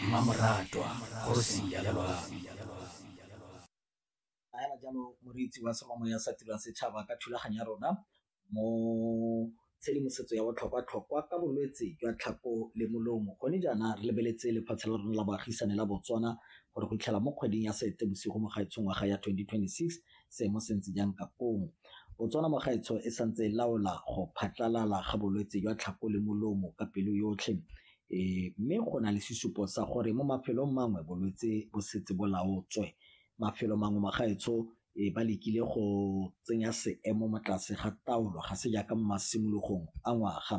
mmamoratwa kgosi ya lelwang fela jalo moreetsi wa semamo ya sa tirang setšhaba ka thulaganyo ya rona mo tshedimosetso ya botlhokwa-tlhokwa ka bolwetse jwa tlhako le molomo gone jaana re lebeletse lefatshe la rona la baagisane la botswana gore go itlhela mo kgweding ya sete bosigo mo gaetshong ngwaga ya 2026 seemo se ntse jang ka koo Botswana mo gaetsho e santse e laola go phatlalala ga bolwetse jwa tlhako le molomo ka pelo yotlhe e mme go na le sesupo sa gore mo mafelong mangwe bolwetse bo setse bo laotswe mafelo mangwe ma gaetsho e ba lekile go tsenya seemo mo tlase ga taolo ga se jaaka mo masimologong a ngwaga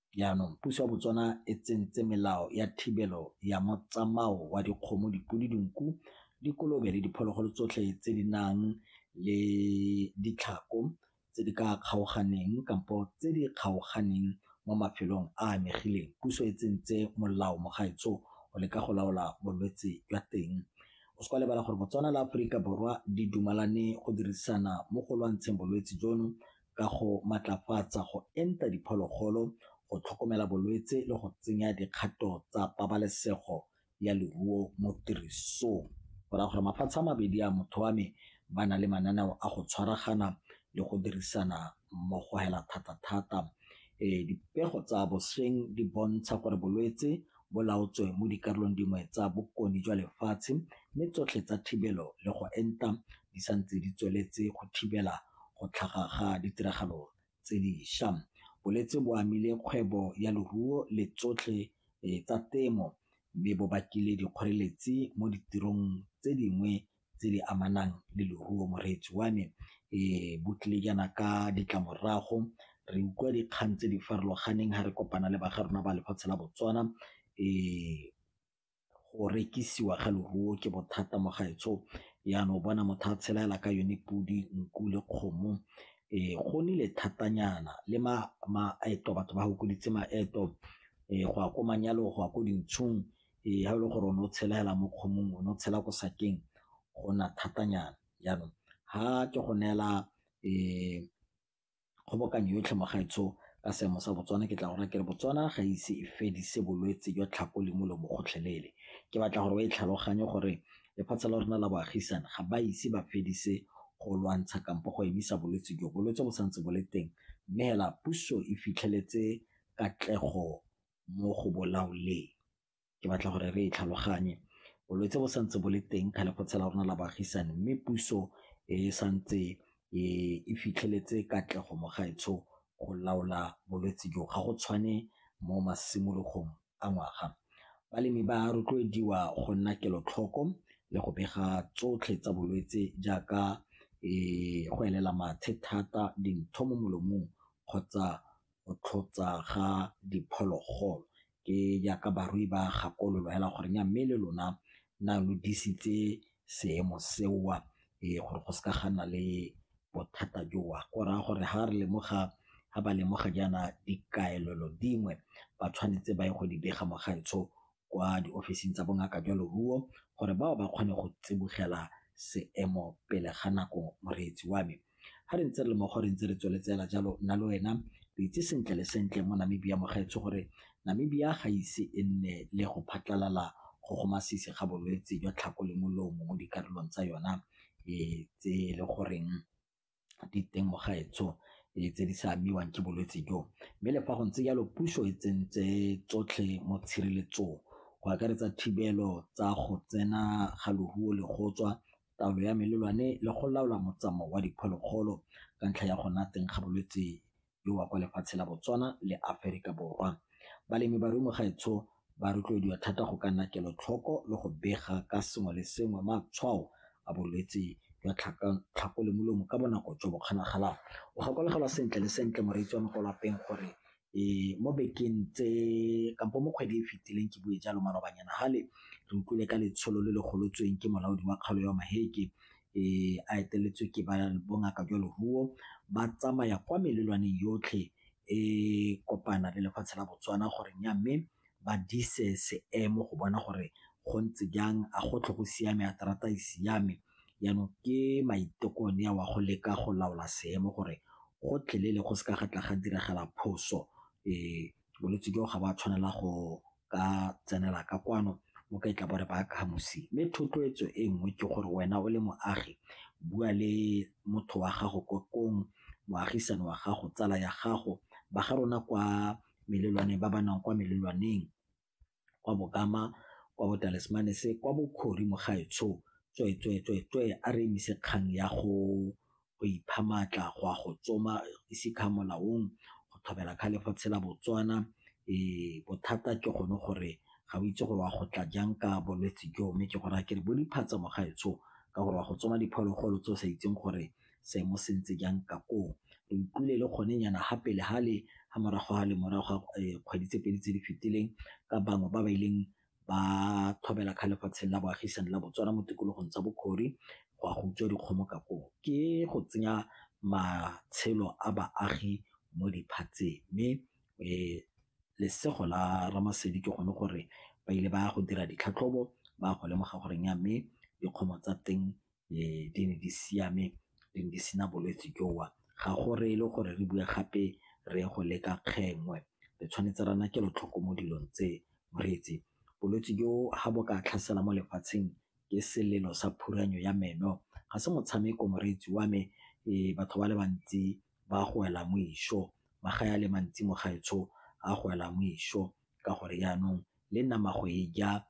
Jaanong puso ya Botswana e tsentse melao ya thibelo ya motsamao wa dikgomo, dipodi, dinku, dikolobe le diphologolo tsotlhe tse di nang le ditlhako tse di ka kgaoganeng kampo tse di kgaoganeng mo mafelong a a amegileng. Puso e tsentse molao mogaetsho go leka go laola bolwetse jwa teng. O se ka wa lebala gore Botswana le Aforika Borwa di dumalane go dirisana mo go lwantsheng bolwetse jono ka go matlafatsa go enta diphologolo, go tlhokomela bolwetse le go tsenya dikgato tsa pabalesego ya leruo mo tirisong. Go raya gore mafatshe a mabedi a motho wa me ba na le mananeo a go tshwaragana le go dirisana mmogo hela thata-thata. Dipego tsa bosheng di bontsha gore bolwetse bo laotswe mo dikarolong dingwe tsa bokone jwa lefatshe mme tsotlhe tsa thibelo le go enta di santse di tsweletse go thibela go tlhaga ga ditiragalo tse diša. Bolwetse bo amile kgwebo ya leruo le tsotlhe tsa temo mme bo bakile dikgoreletsi mo ditirong tse dingwe tse di amanang le leruo. Moreetsi wa me bo tlile jaana ka ditlamorago, re utlwa dikgang tse di farologaneng ha re kopana le ba ga rona ba lefatshe la Botswana . go rekisiwa ga leruo ke bothata mo gaetsho jaana o bona motho a tshela fela ka yone podi, nku le kgomo. Go nnile thatanyana le maeto batho ba fokoditse maeto go ya ko manyalong, go ya ko dintsong ga e le gore o ne o tshela fela mo kgomong, o ne o tshela ko sakeng go nna thatanyana jaanong ga ke go neela . kgobokanyo yotlhe mo gaetsho ka seemo sa Botswana ke tla go raya ke re Botswana ga ise e fedise bolwetse jwa tlhago le molomo gotlhelele. Ke batla gore o e tlhaloganye gore lefatshe la rona la boagisane ga ba ise ba fedise go lwantsha kampo go emisa bolwetse jo, bolwetse bo santse bo le teng mme fela puso e fitlheletse katlego mo go bo laoleng. ke batla gore re e tlhaloganye. Bolwetse bo santse bo le teng ka lefatshe la rona la baagisane mme puso e santse e fitlheletse katlego mo gaetsho go laola bolwetse jo, ga go tshwane mo masimologong a ngwaga. Balemi ba rotloediwa go nna kelotlhoko le go bega tsotlhe tsa bolwetse jaaka go elela mathe thata, dintho mo molomong kgotsa go tlhotsa ga diphologolo ke jaaka barui ba gakololo hela gore nya mme le lona na lo disitse seemo seo ee gore go seka ga nna le bothata joo go raya gore ha re lemoga ha ba lemoga jaana dikaelelo dingwe ba tshwanetse ba ye go di bega mo gaetsho kwa diofising tsa bongaka jwa leruo gore bao ba kgone go tsibogela seemo pele ga nako moreetsi wa me ga re ntse re le mo gore ntse re tsweletsela jalo nna le wena re itse sentle le sentle mo namibia mogaetsho gore namibia ga ise e nne le go phatlalala go go masisi ga bolwetse jwa tlhako le molomo mo dikarolong tsa yona e tse e le goreng ditemogaetsho tse di sa amiwang ke bolwetse jo. Mme le fa go ntse jalo puso e tsentse tsotlhe mo tshireletsong go akaretsa thibelo tsa go tsena ga loruo le go tswa, taolo ya melelwane le go laola motsamao wa diphologolo ka ntlha ya go nna teng ga bolwetse le wa kwa lefatshe la Botswana le Aferika Borwa. Balemi ba mo gaetsho ba rotloediwa thata go ka nna kelotlhoko le go bega ka sengwe le sengwe matshwao a bolwetse jwa tlhako le molomo ka bonako jo bo kgonagalang. O gakologelwa sentle le sentle moreetsi wa mo kwa lapeng gore mo bekeng tse kampo mo kgwedi e e fetileng ke bue jalo malobanyana fale re utlwile ka letsholo le le golotsweng ke molaodi wa kgaolo ya Maheke e a eteletswe ke ba bongaka jwa leruo ba tsamaya kwa melelwaneng yotlhe e kopana le lefatshe la botswana gore nya mme ba dise seemo go bona gore go ntse jang a go tlho go siame a terata e siame jaanong ke maiteko ne wa go leka go laola seemo gore go tlelele go se ka ga tla ga diragala phoso um bolwetse jo ga ba tshwanela go ka tsenela ka kwano mo ka itla bore ba kamosi mme thotloetso e nngwe ke gore wena o le moagi bua le motho wa gago ko kong moagisane wa gago tsala ya gago ba ga rona kwa melelwaneng ba ba nang kwa melelwaneng kwa Bokama, kwa Botalismanese, kwa Bokhori mogaetsho, tswee, tswee, tswee, tswee, a re emise kgang ya go go ipha maatla, go a go tsoma, ise kha molaong, go thobela kha lefatshe la Botswana. Ee, bothata ke gone gore ga o itse gore wa go tla jang ka bolwetse joo, mme ke go raya ke re bo diphatsa mogaetsho ka gore wa go tsoma diphologolo tse o sa itseng gore. seemo se ntse jang ka koo. Re utlwile le gone nyana ha pele ha le ha morago ga le morago ga kgwedi tse pedi tse di fetileng ka bangwe ba ba ileng ba tlhobela kga lefatsheng la boagisane la Botswana mo tikologong tsa Bokhori go a go utswa dikgomo ka koo. Ke go tsenya matshelo a baagi mo diphatseng mme lesego la Ramasedi ke gone gore ba ile ba ya go dira ditlhatlhobo ba go lemoga gore mme dikgomo tsa teng um di ne di siame, di ne di sena bolwetse jo. Ga go reye le gore re bue gape re go leka kgengwe, re tshwanetse re nna kelotlhoko mo dilong tse. Moreetsi, bolwetse jo ga bo ka tlhasela mo lefatsheng ke selelo sa phuranyo ya meno, ga se motshameko moreetsi wa me. Ee, batho ba le bantsi ba go wela mo išo, magae a le mantsi mo gaetsho a go wela mo išo. ka gore yanong le nama go e ja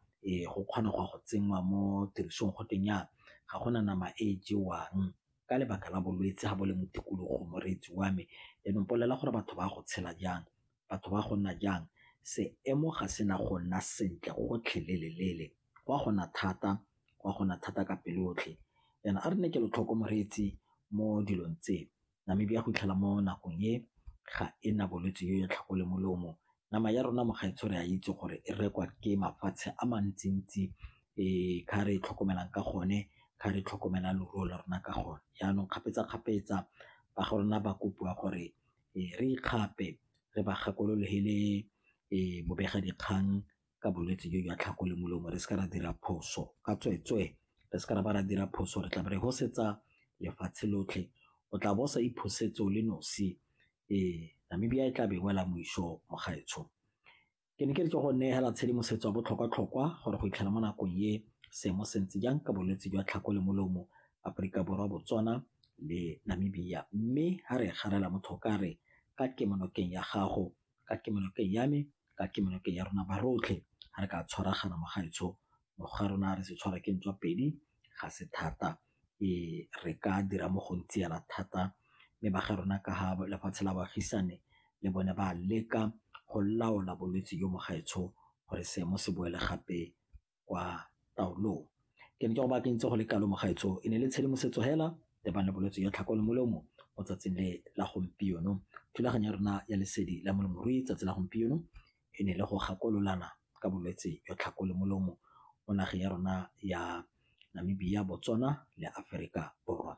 go kgona go ya go tsenngwa mo tirisong go tweng yana ga gona nama e jewang ka lebaka la bolwetse ga bo le mo tikologong moreetsi wa me. Yanong bolelela gore batho ba go tshela jang, batho ba go nna jang, seemo ga se na go nna sentle gotlhelele-lele, go a go na thata, go a go na thata ka pelo yotlhe. Jaanong a re nne kelotlhoko moreetsi mo dilong tse, Namibia go fitlhela mo nakong e ga e na bolwetse yo ya tlhako le molomo. Nama ya rona mo gaetsho re a itse gore e rekwa ke mafatshe a mantsi-ntsi ka re e tlhokomelang ka gone, ka re tlhokomela leruo la rona ka gone. Jaanong kgapetsa-kgapetsa ba ga rona ba kopiwa gore re ikgape re ba gakololo he le bobega dikgang ka bolwetse jo jwa tlhako le molomo re se ka ra dira phoso ka tsweetswee re se ka ra ba ra dira phoso re tla be re hosetsa lefatshe lotlhe o tla bo sa iphosetse o le nosi ee namibia e tla be wela moiso mogaetsho ke ne ke re ke go neela tshedimosetso ya botlhokwa-tlhokwa gore go itlhela mo nakong e seemo se ntse jang ka bolwetse jwa tlhako le molomo aforika borwa botswana le namibia mme ga re garela motho ka re ka kemonokeng ya gago ka kemonokeng ya me, ka kemonokeng ya rona ba rotlhe ga re ka tshwaragana mo gaetsho mo ga rona re se tshwara ke ntswa pedi ga se thata re ka dira mo go ntse yana thata mme ba ga rona ka ga lefatshe la baagisane le bone ba leka go laola bolwetse jo mo gaetsho gore seemo se boele gape. kwa taolong. Ke ne ke go bakantse go le kalo mogaetsho e ne le tshedimosetso hela le bana bolwetse ya tlhako le molomo mo tsatsing le la gompieno. Thulaganyo ya rona ya lesedi la molemirui tsatsi la gompieno e ne le go gakololana ka bolwetse jwa tlhako le molomo mo nageng ya rona ya Namibia, Botswana le Aferika Borwa.